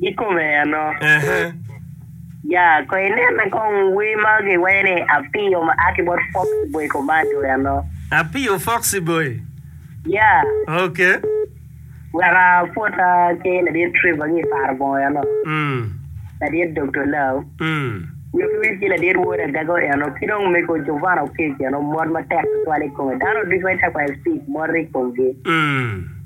I kome ano? Ehe. Ya, ko inene kong wer ma giwero ni Apiyo ma a ki bot Foxy Boy Commando ano? Apiyo Foxy Boy? Ya. Ok. Weka apwota ki Ladit Trevor ki i Paro Bongo ano? Mm. Ladit Doktor Lau? Mm. Nyo ki wit ki Ladit Wod Agaga ano? Ki dong Mego Jovana Oketch ano? Mot matek tutwal i kome. Dano ducu ma i Turquoise Peak motte i komgi. Mm.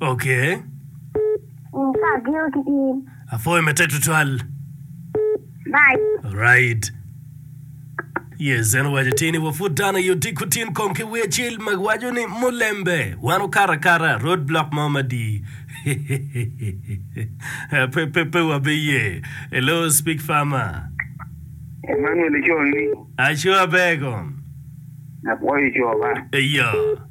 Okay. In ka ageno ki in. Apwoyo matek tutwal. Bye. Alright. Yes, en owaco ti ni wa pud dano aye otiku tin kong ki wi acil ma waco ni mulembe wan okato akata road block mo madi. pe pe pe wabiye. Hello, speak farmer. Emmanuel Ico ni Aco aber kong. apwoyo ico ba. Eya.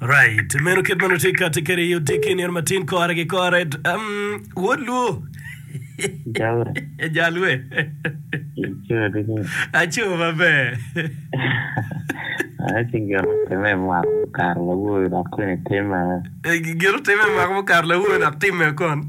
Right. Meno kit ma nongo tye kati kede i odi kinir ma tin kore ki kore. Um, wod luo. Jawe. Jalwe. Ico di ni. Aco maber. Aye ci gin otime i mwaka mukato lawoyo dok kwene timme. Gin otime i mwaka mukato lawoyo dok timme kon.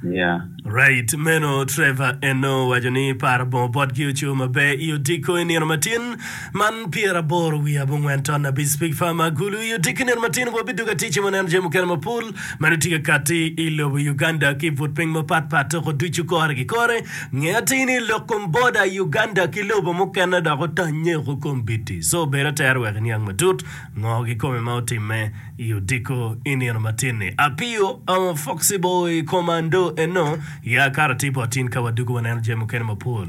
Yeah. Right meno Trevor eno owaco ni paro bongo botgi oco maber i odiko i nino matin man pyera aboro wiye abongwen ton abic Speak Farmer Agulu i odiko i nino matin wa bidugo aticce wa neno jami mukene mapol mani tye ka kati i lobo Uganda ki but piny mapat pat toko ducu kore ki kore nge atir ni lok kom border Uganda ki lobo mukene dok otanye oko kom biti so bedo atere wek iniang matut Ngo kikome ma otimme i odiko i nino matin-ni? Apio ongo foxi bor i koma ndo eno? Ya akato atir bot in ka wadwogo waneno jami mukene mapol.